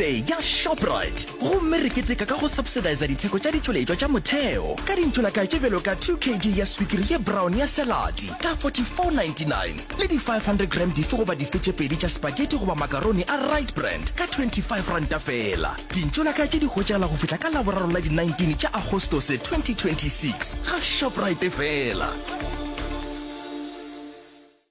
Day ya Shoprite gomme re keteka ka go subsidiza ditheko tša ditšweletšwa tša motheo ka dintšolakae tše bjalo ka 2 kg ya swikiri ye brown ya saladi ka 44.99 le di 500 g dife goba dife tše pedi tša spaghetti goba makaroni a Rite Brand ka R25 feela. Dintšolakae tše di hwetšagala go fihla ka Laboraro la di 19 tša Agostose 2026 ga Shoprite feela.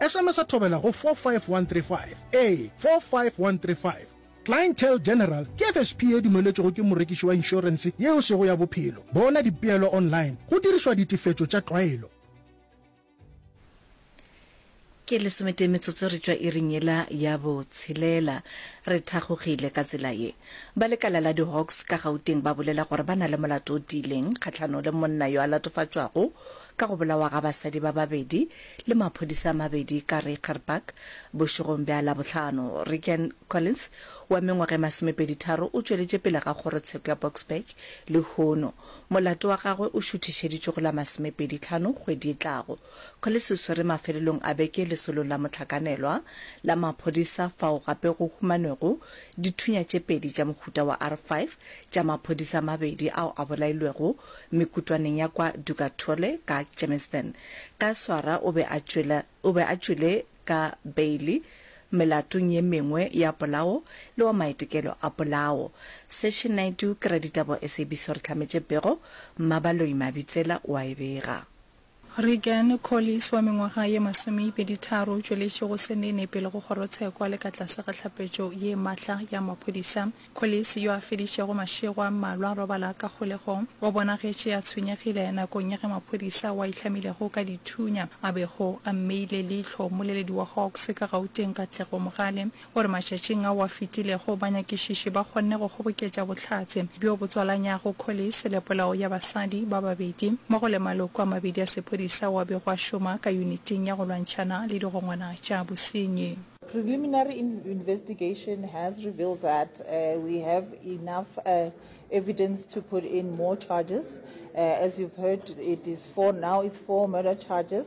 Sms thobela go 45135, ee, 45135. Clientele General ke FSP e dumeletšwego ke morekiši wa inšorense yeo sego ya bophelo. Bona dipeelo online go dirišwa ditefetšo tša tlwaelo. Ke lesometee metsotso re tšwa iring yela ya botshelela. Re thakgogile ka tsela ye. Ba lekala la di-Hawks ka Gauteng ba bolela gore ba na le molato o tiileng kgahlanong le monna yo a latofatšwago Ka go bolawa ga basadi ba babedi le maphodisa a mabedi ka Rechterpark bošegong bja Labohlano, Rican Collins wa mengwaga e masomepeditharo o tšweletše pele ga kgorotsheko ya Boksburg lehono. Molato wa gagwe o šuthišeditšwe go la masomepeditlhano kgwedi e tlago. Collins o swerwe mafelelong a beke lesolong la mohlakanelwa la maphodisa fao gape go humanwego dithunya tše pedi tša mohuta wa R five tša maphodisa a mabedi ao a bolailwego mekutwaneng ya kwa Dugatole ka Germiston. Ka swara o be a tšwela, o be a tšwele ka beili melatong ye mengwe ya polao le wa maitekelo a polao. Session Naidoo ke raditaba wa SABC o re hlametše pego, Mmabaloi Mabitsela o a e bega. Reagan Collis wa mengwaga ye masomeipeditharo o tšweletše go se nene pele go kgorotshekwa le ka tlase ga tlhapetšo ye matla ya maphodisa. Collis, yo a feditšego mašego a mmalwa a robala ka kgolegong, o bonagetše a tshwenyegile nakong ya ge maphodisa ao a itlhamilego ka dithunya a bego a mmeile leihlo mmoleledi wa Hawks ka Gauteng Katlego Mogale. gore matšatšing ao a fetilego banyakišiši ba kgonne go kgoboketša bohlatse bjo bo tswalanyago Collis le polao ya basadi ba babedi mmogo le maloko a mabedi a sephodisa ao a bego a šoma ka Yuniting ya go Lwantšhana le Digongwana tša Bosenyi. Preliminary investigation has revealed that we have enough evidence to put in more charges. As you've heard, it is four now, it's four murder charges.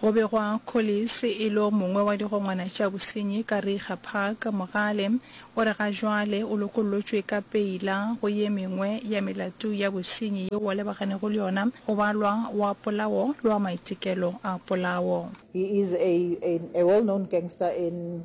Go begwa Collis e lo mongwe wa digongwana tša bosenyi ka Reiger Park. Mogale o re ga jwale o lokollotšwe ka peila go ye mengwe ya melato ya bosenyi yeo a lebaganeggo le yona, go balwa wa polao le wa maitekelo a polao. He is a a well known gangster in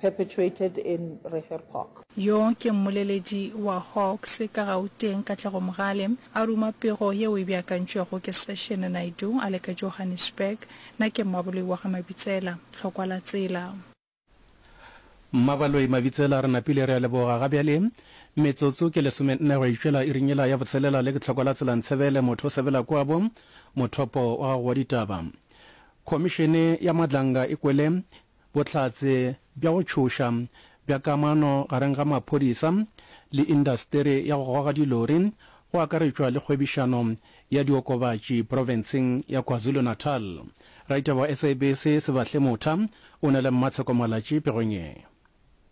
perpetuated in Reher Park. Yo ke mmoleledi wa Hawks ka Gauteng, Katlego Mogale, a ruma pego yeo e beakantšwego ke Session Naidoo a le ka Johannesburg. Na ke Mmaboloi wa ga Mabitsela? Tlhokwa la tsela. Mmabaloi Mabitsela, re napile re a leboga. Ga bjale metsotso ke lesomenne go itšwela iring yela ya botshelela le ke Tlhokwa la tsela Ntshebele, motho o sebela kwabo, mothopo wa gago wa ditaba. Khomišene ya Madlanga e kwele Bohlatse bja go tšhoša bja kamano gareng ga maphodisa le indasteri ya go goga dilori, go akaretšwa le kgwebišano ya diokobatši profenseng ya KwaZulu-Natal. Raditaba wa SABC Sebahle Motha o na le Mmatsheko Malatji pegong ye.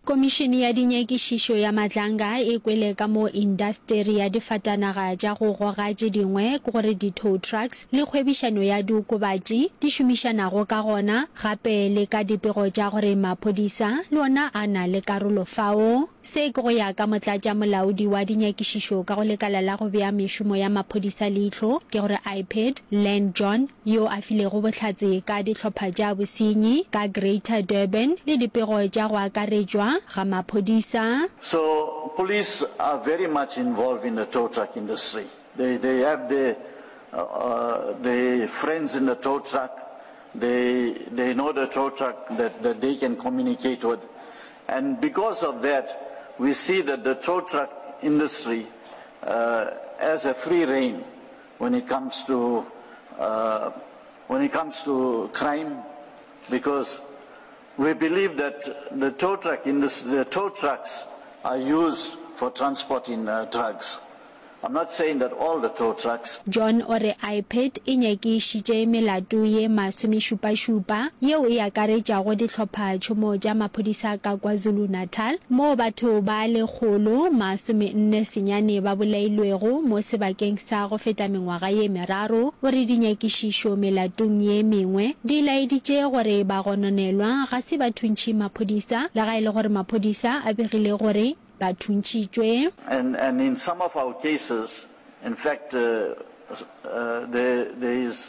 Komišene ya Dinyakišišo ya Matlanga e kwele ka mo indasteri ya difatanaga tša go goga tše dingwe ke gore di-tow trucks le kgwebišano ya diokobatši di šomišanago ka gona, gape le ka dipego tša gore maphodisa le ona a na le karolo fao. Se ke go ya ka motlatšamolaodi wa dinyakišišo ka go lekala la go bea mešomo ya maphodisa leihlo ke gore IPID, Len John, yo a filego bohlatse ka dihlopha tša bosenyi ka Greater Durban le dipego tša go akaretšwa ga maphodisa. So police are very much involved in the tow truck industry. They they have the the friends in the tow truck, they they know the tow truck that that they can communicate with and because of that we see that the tow truck industry as a free reign. When it comes to uh, when it comes to crime, because we believe that the tow truck industry, the tow trucks are used for transporting uh, drugs. I'm not saying that all the tow trucks. John o re IPED e nyakišitše melato ye masomešupašupa yeo e akaretšago dihlophatšhomo tša maphodisa ka KwaZulu-Natal. Natal, moo batho ba lekgolo masomenne senyane ba bolailwego mo sebakeng sa go feta mengwaga ye meraro, o re dinyakišišo melatong ye mengwe di laeditše gore bagononelwa ga se ba thuntšhi maphodisa, le ga e le gore maphodisa a begile gore ba thuntšitšwe. And and in some of our cases, in fact, uh, uh, there there is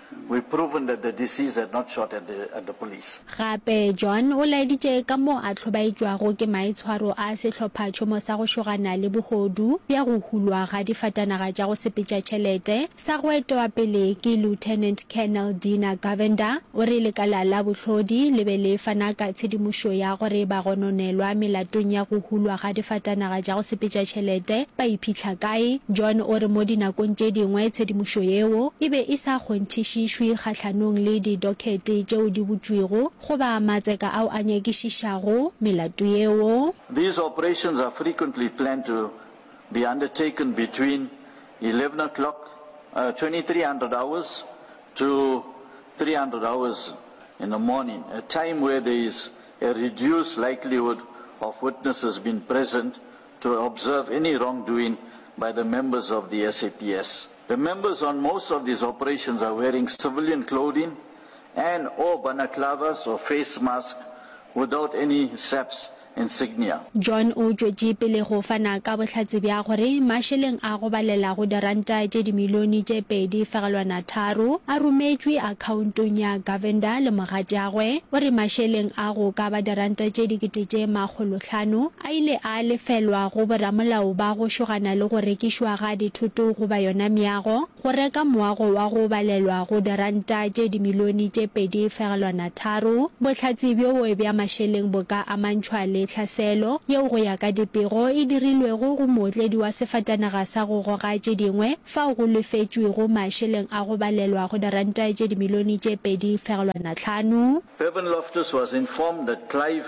We proven that the deceased had not shot at the at the police. Gape, John o laeditše ka mo a hlobaetšwago ke maitshwaro a sehlophatšhomo sa go šogana le bohodu bja go hulwa ga difatanaga tša go sepetša tšhelete sa go etwa pele ke Lieutenant Colonel Dina Govender. O re lekala la bohlodi le be le fana ka tshedimošo ya gore bagononelwa melatong ya go hulwa ga difatanaga tša go sepetša tšhelete ba iphitlha Kae? John o re mo dinakong tše dingwe tshedimošo yeo e be e sa kgonthišišwe kgahlanong le didokete tšeo di butšwego goba matseka ao a nyakišišago melato yeo. These operations are frequently planned to be undertaken between eleven o'clock, twenty three hundred hours, to three hundred hours in the morning, a time where there is a reduced likelihood of witnesses being present to observe any wrongdoing by the members of the SAPS. The members on most of these operations are wearing civilian clothing and or banaclavas or face mask without any SAPS insignia. John o tšwetše pele go fana ka bohlatse bja gore mašeleng a go balela go diranta tše dimilione tše pedi fegelwana tharo a rometšwe akhaontong ya Govender le mogatšagwe. O re mašeleng a go ka ba diranta tše dikete tše makgolohlano A ile a lefelwa go boramolao ba go šogana le go rekišwa ga dithoto goba yona meago, go reka moago wa go balelwa go diranta tše dimilione tše pedi fegelwana tharo. Bohlatse bjoo bja mašeleng bo ka amantšhwa le tlhaselo yeo go ya ka dipego e dirilwego go mootledi wa sefatanaga sa go goga tše dingwe fao go lefetšwego mašeleng a go balelwa go diranta tše dimilione tše pedi fegelwana tlhano. Bevan Loftus was informed that Clive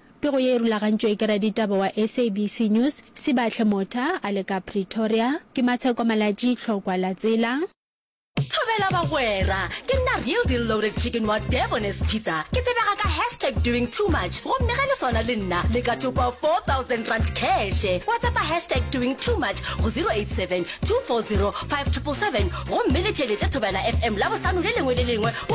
Pego ye e rulagantšwe ke raditaba wa SABC News, Sibahle Motha, a le ka Pretoria. Ke Matsheko Malatji, Tlhokwa la Tsela. Thobela bagwera, ke nna Real Deal Loaded Chicken wa Durban as Pizza. Ke tsebega ka hashtag doing too much gomme ge le swana le nna le ka thopa R4000 cash. Whatsappa hashtag doing too much go 087 240 5777 gomme le theeletše Thobela FM Labohlano le lengwe le lengwe go